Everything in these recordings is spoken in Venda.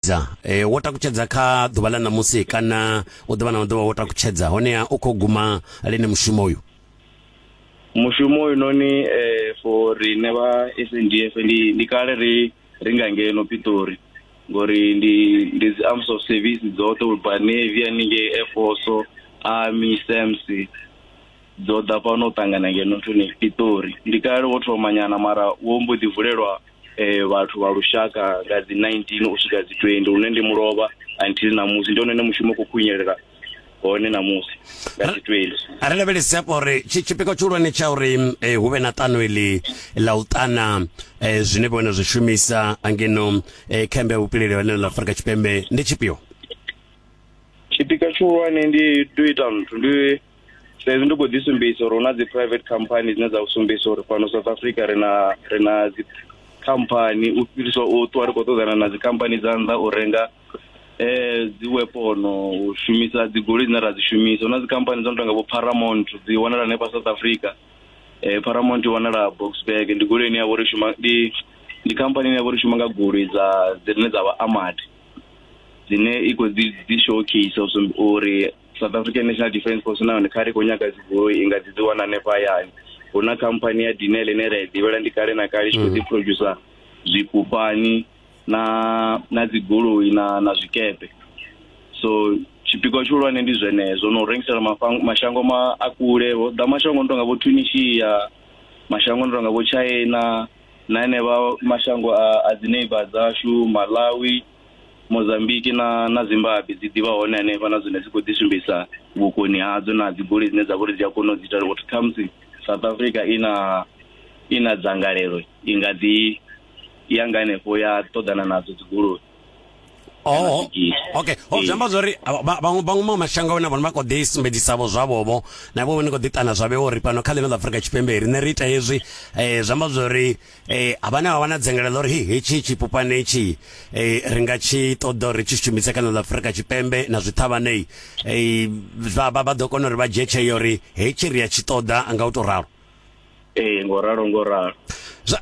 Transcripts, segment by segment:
takutshedza e, wo takutshedza kha ḓuvha ḽa ṋamusi kana u ḓuvha na maḓuvha wo takutshedza honeha u khou guma lini mushumo uyu mushumo uyu noni eh, for rine vha s n d f ndi, ndi kale ri ri nga ngeno pitori ngori ndi ndi dzi arms of service dzoṱhe u bva navy haningei air force army sams dzo ḓa fhano u ṱangana ngeno nthuni pitori ndi kale wo thoma nyana mara wo mbo ḓi vulelwa eh vhathu vha lushaka nga dzi 19 u swika dzi 20 hune ndi mulovha until ṋamusi ndi hone ne mushumo khou khunyelela hone ṋamusi nga dzi 20 a ri lavhelesi hafho uri tshipikwa tshihulwane tsha uri eh, hu vhe na ṱano iḽi ḽa u ṱana eh, zwine vhone zwi shumisa angeno eh, khembe ya vhupileli ha ḽa afurika tshipembe ndi tshifhio tshipikwa tshihulwane ndi tea u ita nthu ndi sa izwi ndi khou ḓi sumbedzisa uri hu na dzi private company dzine dza sumbedzisa uri fhano south africa ri na ri na dzi khamphani u fhirisa u ṱuwa ri khou ṱoḓana na dzi khamphani dza nnḓa u renga eh dzi wepono u shumisa dzi goloi dzine ra dzi shumisa hu na dzi khamphani dzo no tonga vho paramount dzi wanala hanefha south africa eh paramount i wanala boxburg ndi goloi ine ya vho ri shuma ndi ndi khamphani ine ya vho ri shuma nga goloi dza dzine dza vha amadi dzine i khou dzi dzi showcase uri south african national defence force na yone kha ri khou nyaga dzigoloi i nga dzi dzi wana hanefha hayani hu na khamphani ya dinel ine ra i ḓivhela ndi kale na kale i tshi khou ḓi producer zwipupani na na dzigoloi na na zwikepe so tshipikwa tshihulwane ndi zwenezwo na u rengisela mafang- mashango ma a kule vho ḓa mashango no tonga vho tunisia mashango no tonga vho china na enevha mashango a a dzi neighbor dzashu malawi mozambiki na na zimbabwe dzi ḓivha hone hanefha na zwine dzi khou ḓi sumbedzisa vhukoni hadzo na dzi goli dzine dza vha uri dzi a kona u dzi ita uri khamusi south africa i na i na dzangalelo i nga ḓi ya nga hanefho ya ṱoḓana nadzo dzi goloi Oh, okay ho zwi amba zwori vhaṅwe vhaṅwe maṅwe mashango vhone vhone vha kho ḓi sumbedzisavho zwavhovho na vho vhone kho ḓi tana zwavhe uri fhano kha ḽino ḽa afurika tshipembe riṋe ri ita hezwi um zwi amba zwori eh abana ba bana dzengelelo ri hetshi tshipupane tshi eh ri nga tshi ṱoḓa uri tshi shumise kana ḽa Afrika Tshipembe na zwithavhanei eh vha vha ḓo kona uri vha dzhie tsheo uri hetshi ri ya tshi ṱoḓa nga u to ralo eh ngo ralo ngo ralo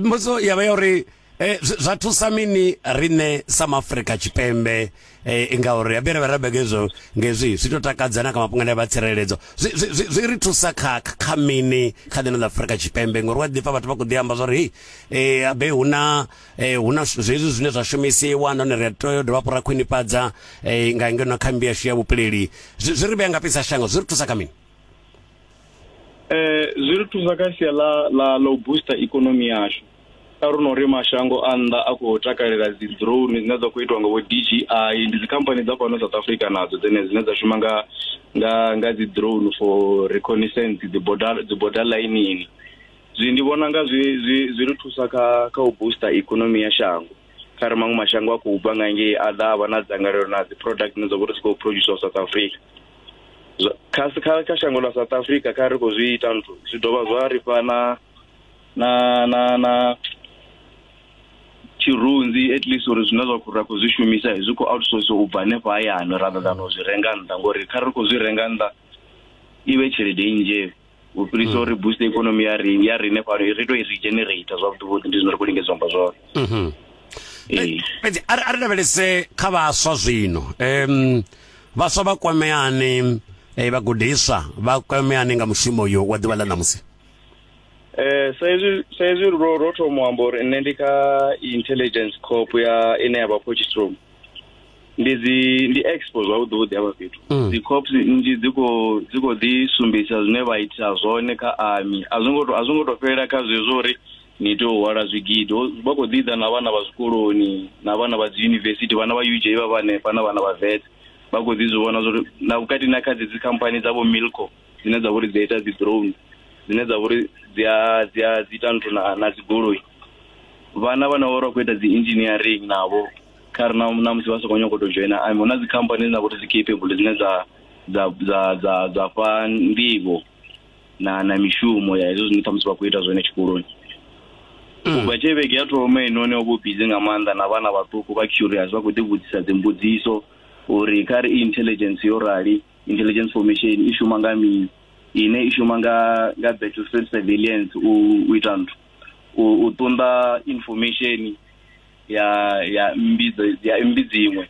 mbudzo ya vha ya uri eh zwa thusa mini rine sa Afrika Tshipembe eh ngauri abere vha rabega izwo ngezwi zwi to takadza na kha mafhungo ane vha tsireledzo zwi ri thusa kha kha mini kha ḽino ḽa Afrika Tshipembe ngori wa ḓifha vhathu vha kho ḓi amba zwori eh abe huna eh huna zwezwi zwine zwa shumisiwa nahone ri tea dovha fhura khwinifhadza eh nga ngeno kha mbi yashu ya vhupileli zwi ri vhe nga pisa shango zwi ri thusa kha mini eh zwi ri thusa kha sia la la lo booster economy yashu a ri no ri mashango a nnḓa a khou takalela dzi drone dzine dza khou itiwa nga vho DJI ndi dzi company dza fhano South Africa nadzo dzene dzine dza shuma nga nga nga dzi drone for reconnaissance dzi border dzi border lineini zwi ndi vhona nga zwi zwi zwi ri thusa kha kha u booster economy ya shango kha ri maṅwe mashango a khou bva nga ngei a ḓa a vha na dzangalelo na dzi product dzine dza vha uri dzi khou producer South Africa kha kha shango ḽa South Africa kha ri khou zwi ita nthu zwi dovha zwa ri fha na na na na tshirunzi at least uri zwine zwa khou ra khou zwi shumisa zwi khou outsource u bva hanefha hayani rather than u zwi renga nnḓa ngori kha ri khou zwi renga nnḓa i vhe tshelede nnzhe u fhirisa uri boost ikonomi ya ri ya rine fhano ri tou i regenerate zwavhuḓi vhuḓi ndi zwine ri khou lingedza amba zwone mhm. fhedzi a ri lavhelese kha vhaswa zwino um vhaswa vha kwameani eh, vhagudiswa vha kwameani nga mushumo uyo wa ḓuvha ḽa ṋamusi Eh sa izwi sa izwi ro ro thoma amba uri nne ndi kha intelligence corp ya ine ya vha Potchefstroom. Ndi dzi ndi expo zwavhuḓi vhuḓi hafha fhethu. Mm. Dzi corps nnzhi dzi kho dzi kho ḓi sumbedzisa zwine vha ita zwone kha army. A zwi ngo to a zwi ngo to fhelela kha zwezwo uri ni tea u hwala zwigidi. Ho- Vha kho ḓi ḓa na vhana vha zwikoloni na vhana vha dzi university vhana vha UJ vha vha hanefha na vhana vha vet. Vha kho ḓi zwi vhona zwa uri na vhukati na kha dzi dzi company dza vho Milco dzine dza vha uri dzi a ita dzi drone dzine dza vha uri dzi a dzi a dzi ita nthu na na dzigoloi vhana vhane vha vha khou ita dzi engineering navho kha ri na na musi vha sokou nyoko to dzhoina ami hu na dzi company dzine dza vha uri dzi capable dzine dza dza dza dza dza fha nḓivho na na mishumo ya hezwo zwine ṱhamusi vha khou ita zwone tshikoloni mm. ubva tshe vhege ya thoma inoni o vho busy nga maanḓa na vhana vhaṱuku vha curious vha khou ḓivhudzisa dzimbudziso uri kha ri intelligence yo rali intelligence formation i shuma nga mini ine i shuma nga nga battlefield surveillance u u ita nthu u ṱunḓa information ya ya mmbi ya mmbi dziṅwe